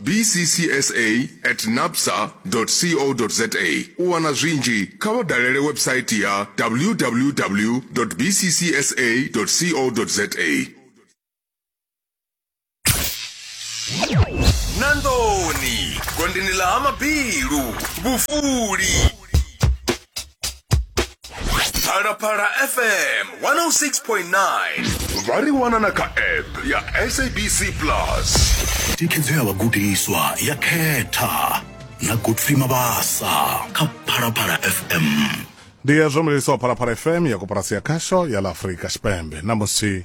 bccsa at napsa co za U wana zwinzhi, kha vha dalele website ya www bccsa co za. na nḓuni gondini ḽa ha mabilu vhufuli phalaphala fm 106.9 vha ri wana na kha app ya sabc plus thikhedzo ya vhagudiswa ya khetha na godfrey mabasa kha phalaphala fm ndi ya zwo mlelisa wa phalaphala fm ya koporasi ya khasho ya la afurika tshipembe na musi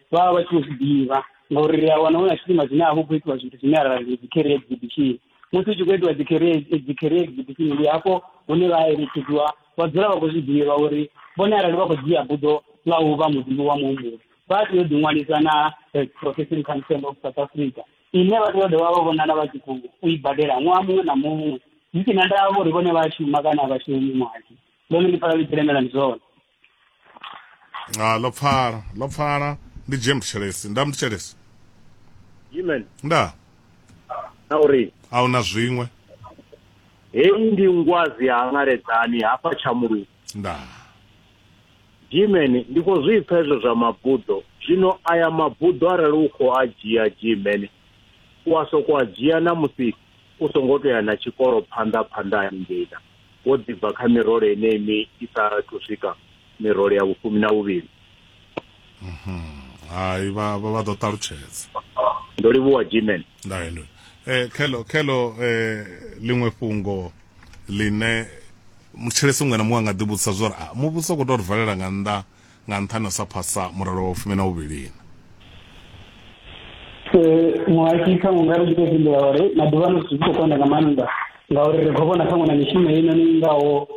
vha vha vha tshi zwi ḓivha ngauri ri a wana hu na tshifhinga zwine a hu khou itiwa zwithu zwine arali ndi dzi-career exhibition musi hu tshi khou itiwa dzi-career dzi-career exhibition ndi hafho hune vha eletshedziwa vha dzula vha khou zwi ḓivha uri vhone arali vha khou dzhia buḓo ḽa u vha muḓivhi wa muhumbulo vha tea u ḓiṅwalisa na eh, profession council of south africa ine vha tea u dovha vha vhonala vha tshi khou u i badela ṅwaha muṅwe na muṅwe zwi si na ndavha uri vhone vha shuma kana a vha shumi muhasho ḽone ndi pfala ḽi tshi lemela ndi zwone ha ḽo pfala ḽo pfala ndi jim tshelesi nda mndu tshelesi jimen nda na uri a hu na zwiṅwe heyi ndi ngwazi ya ngaledzani hafha tshamulungu nda jimen ndi khou zwi pfa hezwo zwa mabuḓo zwino aya mabuḓo arali u khou a dzhia jimen u a sokou a dzhia na musi u songo tou ya na tshikolo phanḓa phanḓa haningei na wo ḓi bva kha mirole yeneyi mi i sa thu swika mirole ya vhufumi na vhuvhili. Mhm. Hai vha vha vha ḓo ṱalutshedza. Ndo livhuwa Jimen. Ndayo ndo. Eh khelo khelo eh liṅwe fhungo line mutshelesi muṅwe na muṅwe a nga ḓi vhudzisa zwori a muvhuso u khou tou ri valela nga nnḓa nga nṱhani ha u sa phasa murole wa fumi na vhuvhilina. Muhaki kha unga ri tshi fhindula uri maḓuvha ano zwithu zwi khou konda nga maanḓa ngauri ri khou vhona ṱhaṅwe na mishumo heinoni i ngaho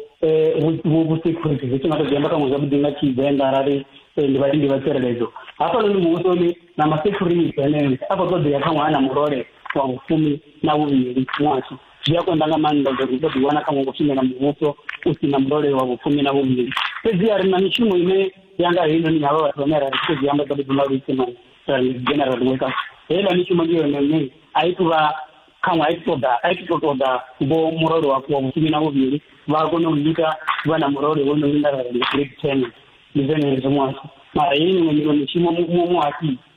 vhusecurity zwi tshi nga to zwi amba ṱhaṅwe zwavhuḓi nga tshivenḓa arali ndi vhalindi vha tsireledzo hafhanoni muvhusoni na masecurity aneo a khou ṱoḓea ṱhaṅwe a na murole wa vhufumi na vhuvhili muhasho zwi a konḓa nga maanḓa ngori ri ḓo ḓiwana kha ngo shumela muvhuso u si na murole wa vhufumi na vhuvhili fhedzi a ri na mishumo ine ya nga heinoni havha vhathu vhane ra ri tshi khou zwi amba ḓaḓi duma luisima general weka heiḽa mishumo ndi yone ine a i tu vha khaṅwe a i ṱoḓa a i tu to ṱoḓa vho murole wa wa vhufumi na vhuvhili vha a kona u ita vha na murole wo no linga ra ri grade ten ndi zwone hezwo muhasho mara hei miṅwe miṅwe mishumo muhasho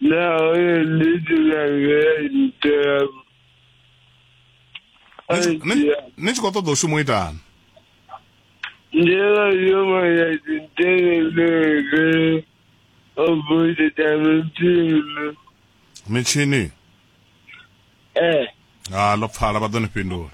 Larry Little Larry Dab. Ni tshi khou ṱoḓa u shuma u itani njela yoma ya tinteleleke obude tamitini mitshini eh ha ḽo pfala vha ḓo ni fhindula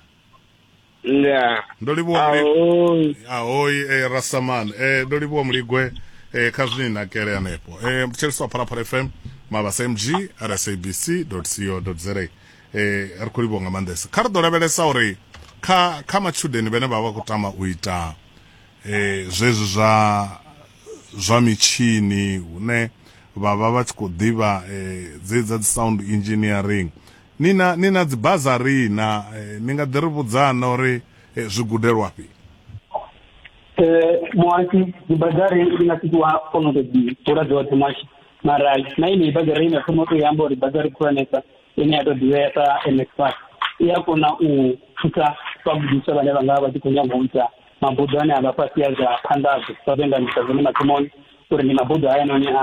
ndaa ndo livhuwa ahoi ahoi eh, rastaman eh, ndo livhuwa muligwe eh, kha zwine ni nakele hanefho eh, mtshelisi wa phalaphala fm mabasa mg rsabc co za eh, ri khou livhuwa nga maanḓesa kha ri ḓo lavhelesa uri kha kha matshudeni vhane vha vha khou tama u ita eh, zwezwi zwa zwa mitshini hune vha vha vha tshi khou ḓivha eh, dzedza dzi sound engineering Ni na, ni na dzibazari na, eh, ni nga ḓi ri vhudza na uri eh, zwi gudelwafhi? Eh, muhasi dzibazari ndi nga sitiwa kono ḓo dzi ḓura dzoṱhe muhasi mara na ine bazari ine thoma to yamba uri bazari khulwanesa ine ya to ḓivhea sa NSFAS i ya kona u thusa vhagudiswa vhane vha nga vha tshi khou nyanga u ita mabuḓo ane a vha fhasi ya zwa phanḓadzo sa vhe nga ndisa zwone mathomoni uri ndi mabuḓo haya noni a